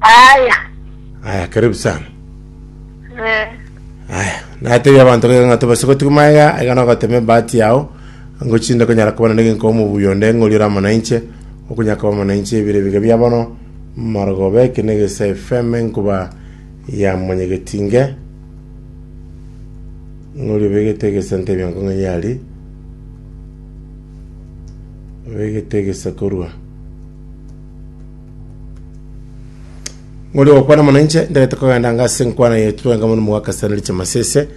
Aya. Aya, karibu sana. Eh. Aya, natebia abanto gaiga ng'a tobase gotigwa magega, aiga nogotema ebahati yao, ang'o chinde konyara kobana negenko omobuya onde, ng'ori ore amo nainche, okonyara koba amo nainche ebiro ebiga bia bono, marogoba eke negesa FM enkuba ya monyegetinge, ng'ori obegete egesa ntebia nko ng'ai ari, obegete egesa korwa. ng'ori ogokwana mono inche ntarete kogenda anga ase enkwana yaito twenka mono mogakasitani riche masese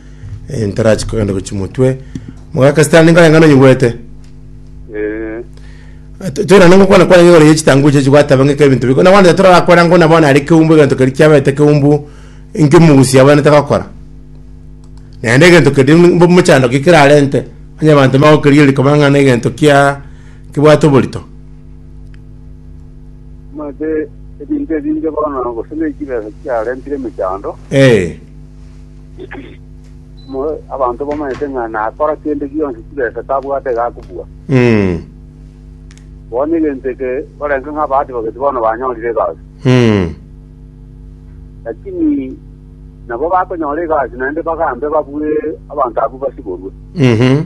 eh, ntarachi kogenda gochi motwe mogakasitani ninka engano nyigwete Eh, toirana ngokwana kwana ng'ore ye chitangu chechi gwataba ng'ika ebinto biko na wanda tora akora ngo na bona ari keumbu egento keri kiabete keumbu inke mugusi abana takakora naende egento keri mbo mochando kikirarente onye abanto magokeria rikaba ng'a na egento kia kibwate oborito Omanyete ebinto ebinge bono, gose ne chibesa chiarentire emechando. Ee, Mo- Abanto bamanyete ng'a nakora kende gionsi chibesa tabwate gakobua. mm, Bono egento eke barenge ng'a abahati bageti bono banyorire egasi. mm, Lakini nabo bakonyora egasi naende bagambe babue abanto abwo basiborwe. mhm,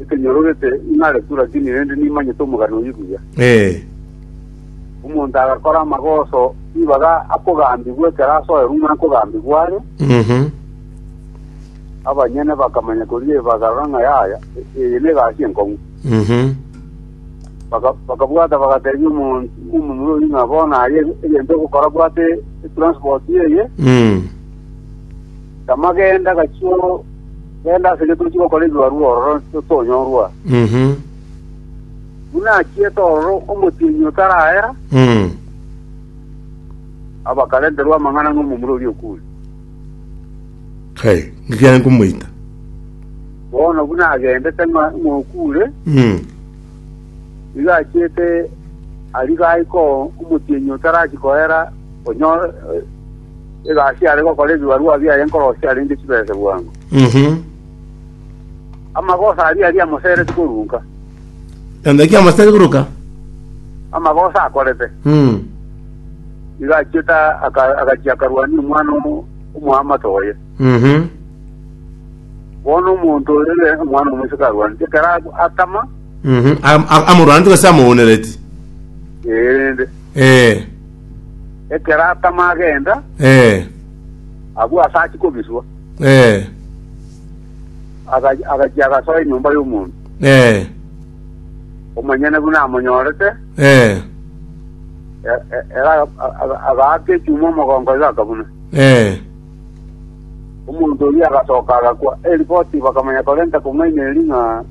Ekenyorogete ing'are tu lakini rende nimanyete omogano oyio buya. Ee. Omonto agakora amagoso ibaga akogambigwa ekero asoe rung'o akogambigwa are, Mhm. abanyene bakamanya koria eye bakarora ng'a yaya, e- eye negasi enkong'u. Mhm. Baka- bakabwata bagatebia omonto omomura oyio ng'a bono aye egento ogokora bwate etransport eye, Mm. tama genda gachio Genda ase inche tochie gokora ebibarua ororo totonyorwa. Buna achiete ororo omotienyi otarahera, abakarenterwa amang'ana ng'omomura oria okure. Kai, ngikiare nkomoita. Bono buna agendete ng'a ng'a okure, nigo achiete ariga aiko omotienyi otarachia kohera onyore egasi are gokora ebibarua biaye nkorosia arenge chibese bwango. Mhm. Amagoso aria aria amosereti korunka, Naende ki amasitari koruka? amagoso akorete. Mm. Igo achiete aka- agachia akarwania omwana omo- omoamate oye. Mhm. Bono omonto oyo ere omwana omoiseke arwanete, ekero ab- atama, Mhm. Am- am- Amorwanete gose amoonereti. ee, rende Eh. Ekero atama agenda, Eh, agwo ase achia kobiswa, eh, aga- agachia agasoa enyomba y'omonto. eh, Omonyene buna amonyorete, eh, e- e- ere aga- aga- agaaka echuma omogongo iga akabuna. eh, Omonto oria agasoka agakwa. Eripoti bakamanya korenta kong'aina eri ng'a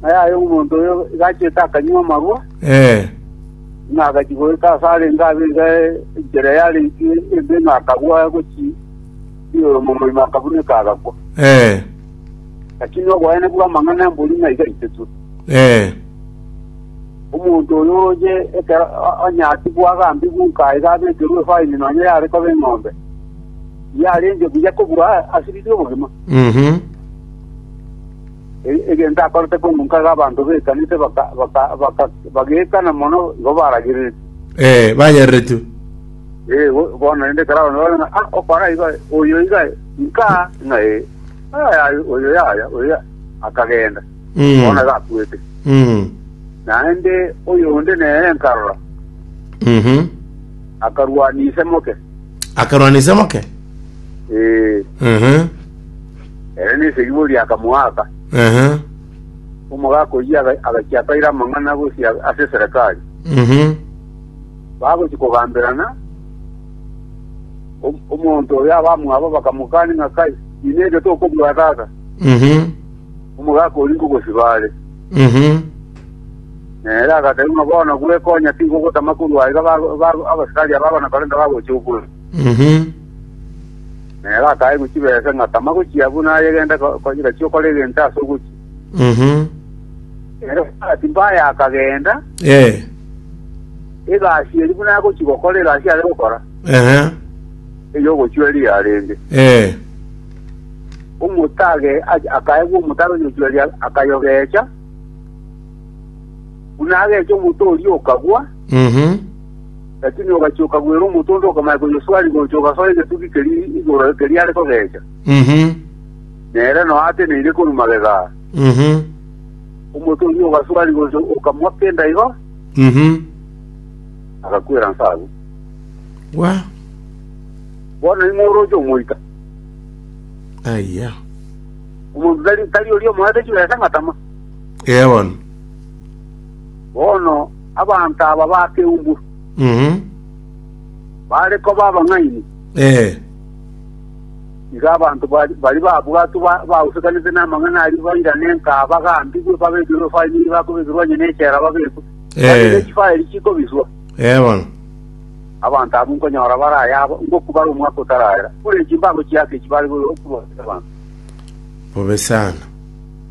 ng'a yaye omonto oyo igachete akanywa amarwa, eh, Ng'a agachia goeta aase arenge abere enchera yarenge embe ng'a akagwa gochia igoro moima akabuneka agakwa. Eh. Lakini oboene bw'amang'ana mbori ng'a iga aitetwe. Eh. Omonto oyo oye ekero o- onye atigwa agambigwa nka iga abekerwe efaini nonya yare koba eng'ombe, yarenge buya kobua asiririe obogima. Mhm. egento akorete korwa nkaga abanto b'ekanisa bagaikana mono igo baragereretie. Ee, bayereretie. Ee, bono rende ekero abanto babona ng'a okora igo aye, oyo igo aye, inka ng'a ee, yaya, oyo yaya, oyo yaya, akagenda, bono iga akwete. Naende oyonde nere nkarora, akarwania ise moke. Akarwania ise moke? Ee. Ere nesegi boria akamoaka. Ehe. Omogaka oyio aga- agachia akaira amang'ana gosia ase eserekari. Mhm. Bagochia kogamberana, om- omonto oyo abamwabo bakamokani ng'a kai, inee eke tokobua tata? Mhm. Omogaka oria nkogosiba are. Mhm. Nere agateba ng'a bono gwekonya tigo ogotama korwa iga ba- ba- abasikari aba abana korende bagochia okwe. Mhm. Na ere akaegwa chibesa ng'a tama gochia buna aye genda ko- ko- gachia okora egento ase ogochia. Mhm. Ere omwabati mbaye akagenda, Eh. egasi eri buna agochia gokora egasi are gokora, Ehe. eyogochweria arenge. Eh. Omotage a- akaegwa omotare oyochweria akayogecha, buna agecha omoto oria okagwa, Mhm. Lakini ogachia okagwera omonto onde okamanya koyeswaria gocha ogasoa egetugi keria igoro keria are kogecha, Mhm. nere nonya ateneine korwa magega aa. Mhm. Omonto oyio ogaswaria gocha okamwa kenda igo, Mhm. agakwera inse agwo. Wa. Bono ning'o oroche omoita? Aya. Omonto tari tari oria omoete chibesa ng'a tama. Eon. Bono abanto aba bakeumbwa Mhm. bare koba abang'aini, Eh. igo abanto bari bari babwatwe ba- bausekanete namang'ana aria bairane nkaa bagambigwe babekirwe efaini eria bakobekirwe onye nechela babekwe Eh. Onye nechifaeli chikobiswa Eh bono. abanto abwo nkonyora bare ayabo ngokubara omwaka otarara buna echimbago chiake echi bare gokuba abanto Bobe sana.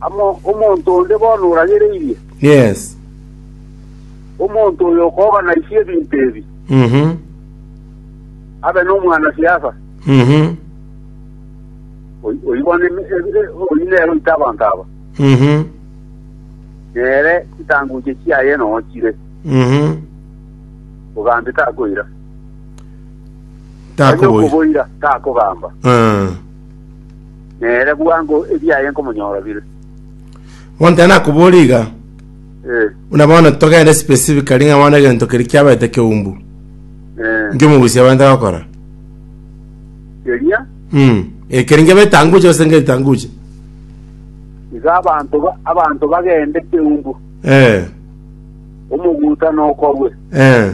Amo omonto onde bono oragereirie? Yes. Omonto oyo okoganaisie ebinto ebi Mhm. abe nomwanasiasa, Mhm. oy- oigo neme- e- e- oyio nere oite abanto aba, Mhm. nere chitanguche chiaye nonya chire, Mhm. ogambe takoira, onye Takoboira. okoboira takogamba. Eh. Nere bwango ebiaye nkomonyora bire. Bono tari nakobora iga, Eh, buna bono togende specifically ng'a bono egento keria kiabaete keumbu, eh, inki omogusi abate gokora? keria. Mm. Eh, keria nkiabaete tanguche gose nkaite tanguche. Iga abanto ba- abanto bagende keumbu. Eh. Omoguta nokorwe. Eh.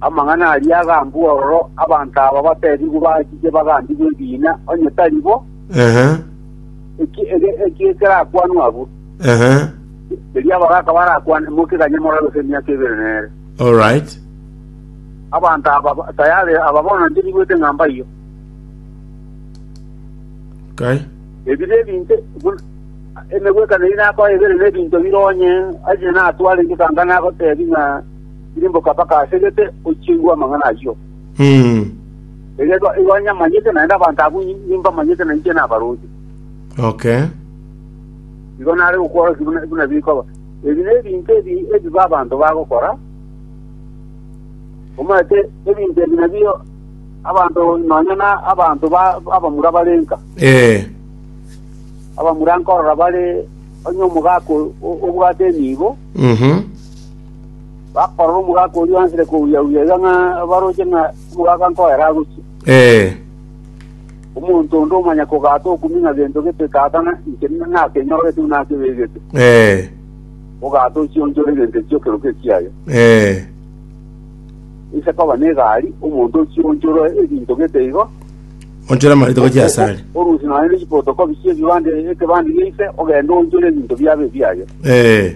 Amang'ana aria agambua ororo, abanto aba bateebigwe bachike bagambigwe ebiina, onye tari bo, Ehe, eki ege eki ekerakwanwe abwo. ehe, Erio abagaka barakwane, Moke ganye morabe ase emiaka ebere nere. all right. Abanto aba ba- tayari aba bono inche nigwete ng'a mbaiyo. Okay. Ebire ebinto buna- emegwekano eri nakoa ebere na ebinto bire onye, onye natware inche kanga nagoteebia ng'a Ririmboka mpaka ase gete ochiegwe amang'ana ayio, erio igo nyamanyete, naende abanto abwo inwe mbamanyete na inche nabaroche. Okay. Igo nare gokworokia buna buna bikoba. Ebi nebinto ebi ebibe abanto bagokora, omanyete ebinto ebi nabio abanto nonya na abanto ba abamura barenka. Eh. Abamura nkorora bare onye omogaka o- obwate enibo, Mhm. Bakorora omogaka oria oanchire kouyia-uyia iga ng'a baroche ng'a omogaka nkoera agochia. Ee. Omonto onde omanya kogata okumi ng'a gento gete tata na inche nakenyorete buna akebegete, Ee. ogata ochionchore egento ekio ekerogo ekiaye. Ee. Ise koba negari, omonto ochionchore ebinto gete igo, Onchore amareito gochia ase are. orusie nonya ne chipotokobi chi'ebibande ekebande gia ise, ogende oonchore ebinto biabo ebiaye. Ee.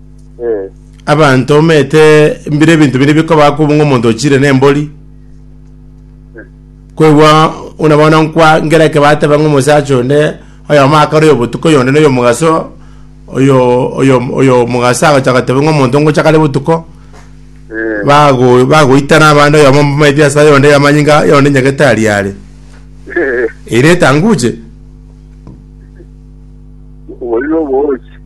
Eh, Abanto omete mbire ebinto biri bikoba kobu ng'a omonto ochire nembori. Kwegwa una bono nkwa ngera eke bateba ng'a omosacha onde oyomo akare oyo botuko oyonde na oyo omogaso oyo oyo oyo omogaso agacha agateba ng'a omonto ngocha kare botuko eh, bago bagoitana abande oyomo maeti ase ayonde amanyinga yonde nyagetari are eh, ere etanguche oboigo bochi.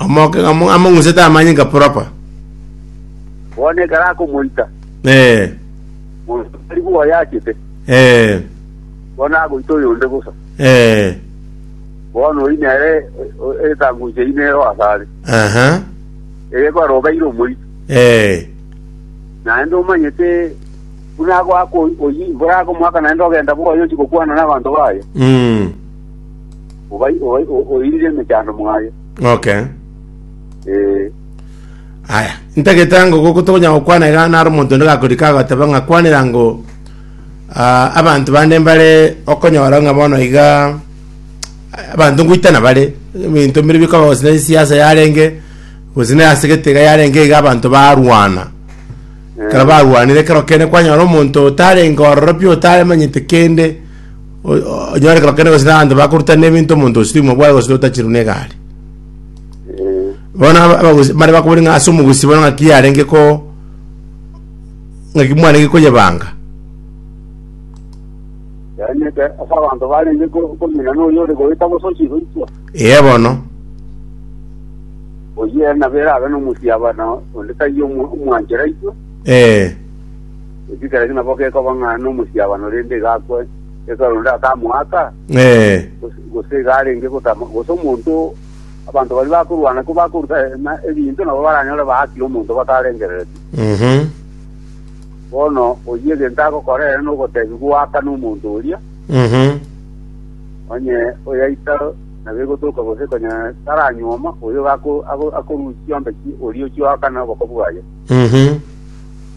Omoke ng'amo- among'usete amanyinga proper. Bono ekero akomoita, Eh, monto tari bwoa oyachete, eh, bono agoita oyonde bosa. eh, Bono oyio nere o- o- etango inche eyio nero asare, aha, egekora obeire omoito. eh, Naende omanyete buna agoaka oyi- oyio, borakomoaka naende ogenda bwoa oyochi gokwana nabanto baye. mm, obai- obai- o- oiririe emechando mwaye Okay. Eh, Aya, ntagete ngo goko tokonya gokwana iga naro omonto onde gakorika agateba ng'a kwanera ngo ah, abanto bande mbare okonyora ng'a bono iga ah, abanto ngoitana bare ebinto mbire bikaba gose na siasa yarenge gose na ase gete iga yarenge iga abanto barwana eh, kero barwanire kero kende kwanyora omonto otarenge ororo pi otaremanyete kende Onyore ekero kende gose abanto bakorutana ebinto omonto gose timwa bwaye gose otachirwe negari. Eh, Bono aba- abagusi mare bakobori ng'a ase omogusi bono ng'aki yarenge ko ng'aki mwarenge koyebanga. yaani eke ase abanto barenge ko- komina noyo ore goeta gose ochigoitwa Ee bono. oyio ere nabo erabe nomosiabana onde taiyo omwanchera itwe Ee. Ekikereki nabo gekoba ng'a nomosiabano rende igakwe ekero onde atamoaka, Ee. gose- gose iga arenge gotama, gose omonto abanto baria bakorwana ko bakorutana ebinto nabo baranyore baakire omonto batarengereretie. Mhm. Bono oyio egento agokora ere nogotebia goaka nomonto oria, Mhm. onye oyaita nabo egotoka gose konya taranyuoma, oyo iga ako- ako- akorusia ombe ki oria ochioaka noboka bwaye. Mhm.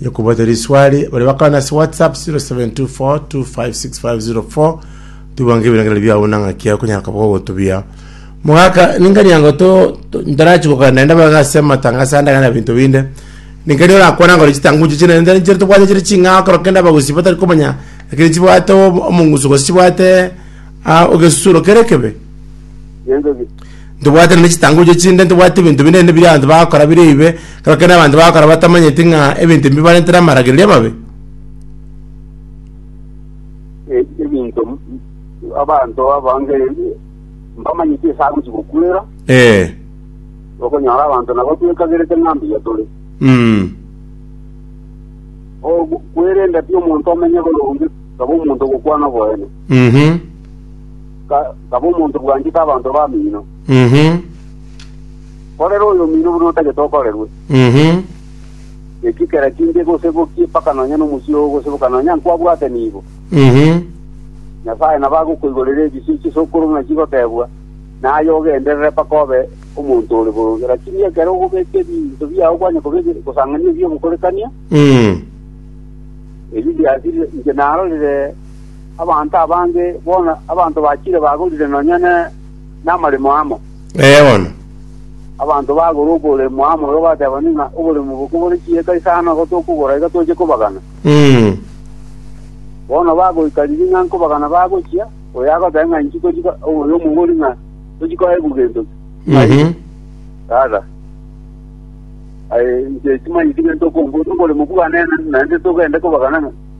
Yo kubate riswali bari bakana ase WhatsApp 0724256504 tubange ebirangero biao na ng'aki yao kunyara koba gogotubia mogaka ningani yango to to- ntarachi gokana naende baga ase amatangaso ande gana binto binde ningani orakwana ngore chitanguchi chine nda nchire tobwate chire ching'ao kero kende abagusi batari komanya lakini chibwate omo- omong'usu gose chibwate ah, ogesusuro kere ekebe Nyenchoki. Ntobwate nonya chitangochio chinde, ntobwati ebinto binene biria abanto bagokora bire ebibe, ekero kende abanto bagokora batamanyeti ng'a ebinto ebi bibarentere amaragererio amabe. E- ebinto abanto abange mbamanyeti ase agochi gokwera Ee. okonyora abanto nabo twekagerete ng'a mbuya tore Mm. Ogu- kwerenda ti omonto omenye boronge taba omonto ogokwana oboene Mhm. ka- kaba omonto bwanchete abanto b'amino. Mhm. Korera oyomino buna otagete okorerwe. Mhm. Eki kera kinde gosebokie mpaka nonya nomosio oo ogoseboka nonya nkwabwate nigo. Mhm. Nyasae nabo agokoigorera ebisio chisokoro buna chigotebwa, naye ogenderere mpaka obe omonto ore boronge. Lakini ekero ogobeka ebinto biao kwanya koba ebi- gosang'ania ebi'ogokorekania, Mm. ebi biasire inche narorire Abanto abange, bono abanto bachire bagorire nonya ne namaremo amo. Ee bono. Abanto bagora oboremo amo igo batebanire ng'a oboremo obo kobore chieka isano na igo tokogora iga toche kobagana. Mm. Bono bagoika ring'ana nkobagana bagochia, oyo agoteba ng'a inchi tochi ko- oyo omogori ng'a tochi koegwa gento ki. Mhm. Tata, aye inche timanyeti gento okomboria, oboremo bwane naende togende kobagana ng'a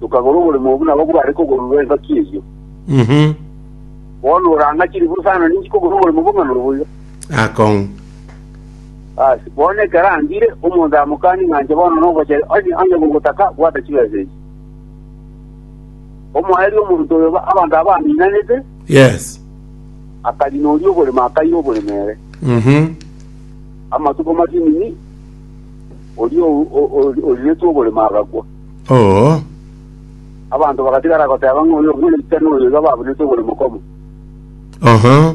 tokagora oboremo obwo nabwo bare kogororwa engaki eyio. Mhm. Bono orang'ache riburu sana ninki kogora oboremo bong'ana obo iga. Akong'u. Ase bono ekero angire, omonto amokanie ng'a inche bono nogochere, onye onye gogotaka, bwata chibesa echi. Omoerio omonto oyo ba- abanto aba baminanete, Yes. akarina oria oboremo akaira oboremo ere. Mhm. Amatuko matinini, oria o- o- o- oriretwe oborimo agakwa. Oo. Abanto bagatigara goteba ng'a oyo omorisia noyo iga babunete oborimo komo. Oho.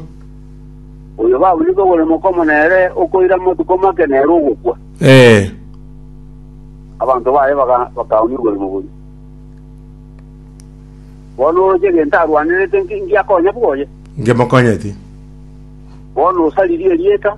Oyo babunete oborimo komo nere okoira amatuko make nere ogokwa. Ee. Abanto baye baga- bakaumia oborimo boria. Bono oroche egento arwanerete nki- ngiakonya bwoye? Ngemokonyeti. Bono osaririe erieta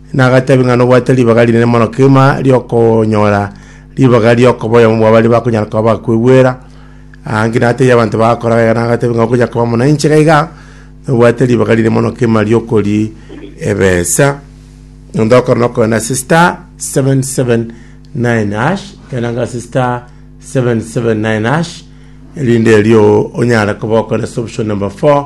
na agateebia ng'a nobwate ribaga rinene mono kegima ri'okonyora ribaga ri'okoboyoma bwa baria bakonyara koba bakwegwera, aa, ngina ataiyo abanto bagakora gaiga, na agateebia ng'a okonya koba muna inche gaiga, nobwate ribaga rinene mono kegima ri'okori ebesa. Onde okore nokogenda ase star 779 hash, genda ng'a ase star 779 hash, erinde erio onyare koba okore ase option number 4